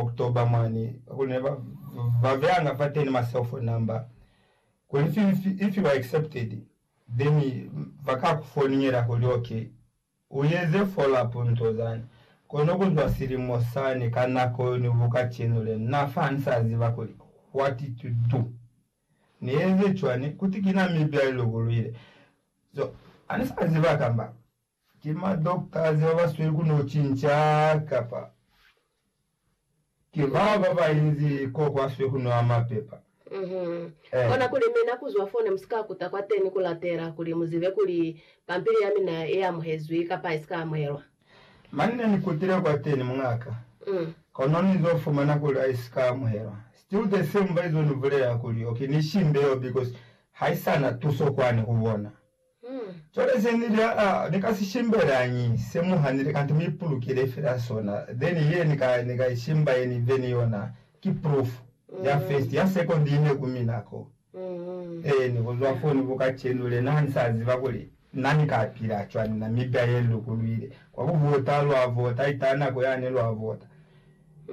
October mwani kuli ne ba beanga fateni ma cell phone number kuli if you are accepted then ba ka ku foningela kuli ok u eze follow up nto zani. Kono ku zwa silimo sani ka nako yo ni bu kacenu le na fa ni sa ziba kuli what to do ni eze cwani kuti ki na mibi ya li lukulwile so ha ni sa ziba kamba Ki ma doctors ba ba sweli ku no cinca kapa ki ba ba ba inzi ko kwa swe ku no ama pepa? Uhmm. Kona kuli mi na ku zwa fo ne mu si ka kuta kwateni ku latela kuli mu zibe kuli pampili ya mina i amuhezwi kapa i si ka amuhelwa. Mane ne ni kutile kwateni, mungaka, kono ni zo fumana kuli ha i si ka amuhelwa. Still the same ba izo ni bulela kuli, Okay, ni shimbe yo because ha i sa na tuso kwani ku bona. Cwale ze ni lya a, ni ka si shimbelañi, se mu hanile, kanti mu ipulukile fela sona, then ye ni ka, ni ka i shimba ye ni be ni yona, ki proof, ya first, ya second i ne ku mina ko. Eeni, kuzwa foo ni ku kacenu, lena ha ni sa ziba kuli Na ni ka pila cwani, Namibia ye ni lukulwile, kwa ku vota, lwa vota, ita nako yane lwa vota.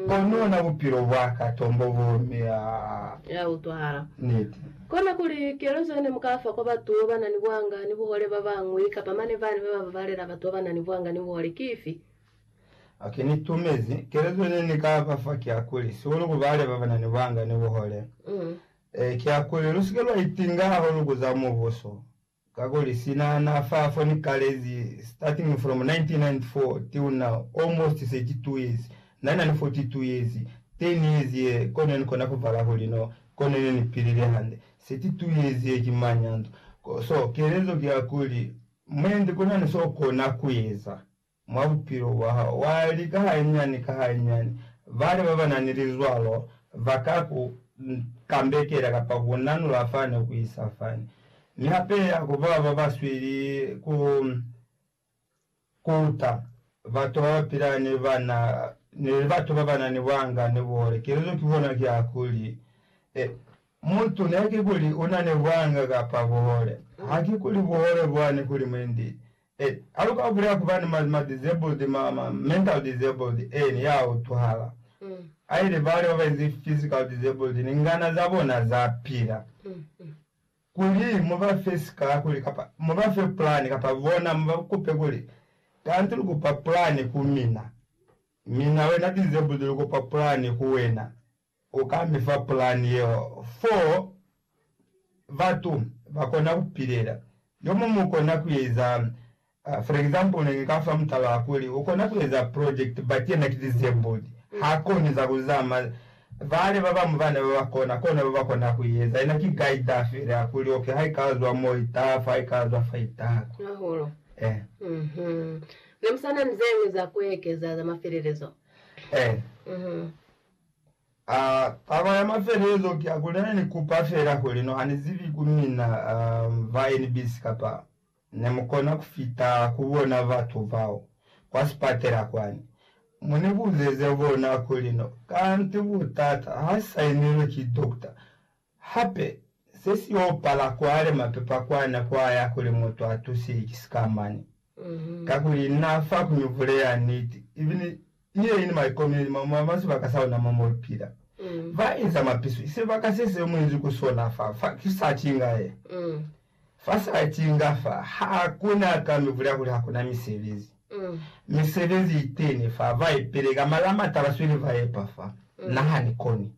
Kono ona bupilo bwaka tombo bo mea. Ya utwahala. Niti. Kona kuli, Kelezo yene mukafa kwa batu bana ni buanga ni buhole babañwi, kapa mane bani baba babalela batu bana ni buanga ni buhole, ki ifi? Ok, ni tumezi. Kelezo yene ni ka ba fa ki ya kuli, sihulu ku bale babana ni buanga ni buhole, ki ya kuli, Lusike lwa itinga hahulu ku za Mubuso. Kakuli sina na fa foni kalezi starting from 1994 till now almost 32 years, na na ni 42 years, 10 years ye ko ne ni kona ku bala kuli no ko ne ne ni pilile hande, 32 years ye ki manyanto. So kelezo ki ya kuli, Mwendi kuna ni so kona ku eza. mwa bupilo bwa hao, wa lika hainyiani ka hainyiani. Bale ba ba na ni lizwalo ba ka ku kambekela kapa ku ku nanula fani ku isa fani. Mi hape ha ku ba ba ba sweli ku kuta batu ba ba pila ni bana ni batu ba ba na ni buhanga ni buhole. Kelezo ki bona ki ya kuli, E, mutu ne ki kuli u na ni buhanga kapa buhole. Ha ki kuli buhole bwani kuli mwendi E, ha lu ka bulela ku ba ni ma, ma disabled, ma, ma mental disabled, eni, ya utwahala. A ile bale ba ba ize physical disabled, ni ngana za bona za pila. Kuli mu ba fe sika, kuli, kapa mu ba fe plan, kapa bona mu ba kupe kuli, Kanti lu kupa plan ku mina. Mina wena disabled lu kupa plan ku wena. U ka mi fa pulani yeo fo batu ba kona ku pilela yo mo mu kona ku eza. For example, ne ni ka fa mutala wa kuli u kona ku eza project but yena ki disabled, ha koni za ku zama. Bale ba bañwi bana ba ba kona, kona ba ba kona ku eza. Yena ki guider fela ya kuli, okay, ha i ka zwa mo, i taha fa, ha i ka zwa fa, i taha kwa. Hahulu. Eh. Mhm. Ne mu sa na ni ze ñwi za ku ekeza za mafelelezo? Eh. Mhm. A, taba ya mafelezo ki ya kuli nane ni kupa fela kuli no hani zibi ku mina ba NBC kapa ne mu kona ku fita ku bona batu bao kwa sipatela kwani. Mu ni buzeze bona kuli no kanti butata ha sainilwe ki dokota Hape, se si y'o pala kwale mapepa kwa nako a ya kuli mutu a tusihi ki sikamani. Kakuli n'a fa ku mivule ya niti, ibile ni ye i ni maikomelelo ma ma maswe baka sa ona mo mu pila. Ba inza mapisu, i sebaka se se mu inzi ku sona fa, fa ki sa ki nga ye. Fa sa cinga fa, ha ku na ka mi bulela kuli ha ku na misebezi. Misebezi i teni fa, ba i peleka, mara ha m'a taba sweli ba epa fa na ha ni koni.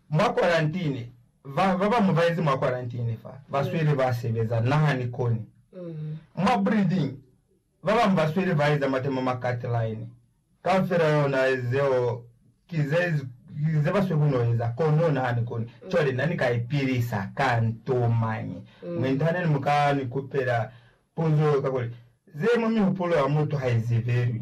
Mwa kwarantine, ba ba bañwi ba yezi mwa kwarantine fa, ba sweli ba sebeza, na ha ni koni. Mwa breeding, Ba bañwi ba sweli ba eza matemo ma cut-line. Kaufela ona zeo ki ze, ki ze ba sweli ku n'o eza. Kono na ni koni. Cwale, na ni ka ipilisa ka nto mañi? Mi nta ne ni muka ni kupela puzo, kakuli, ze mwa mihupulo ya mutu ha i zibelwi.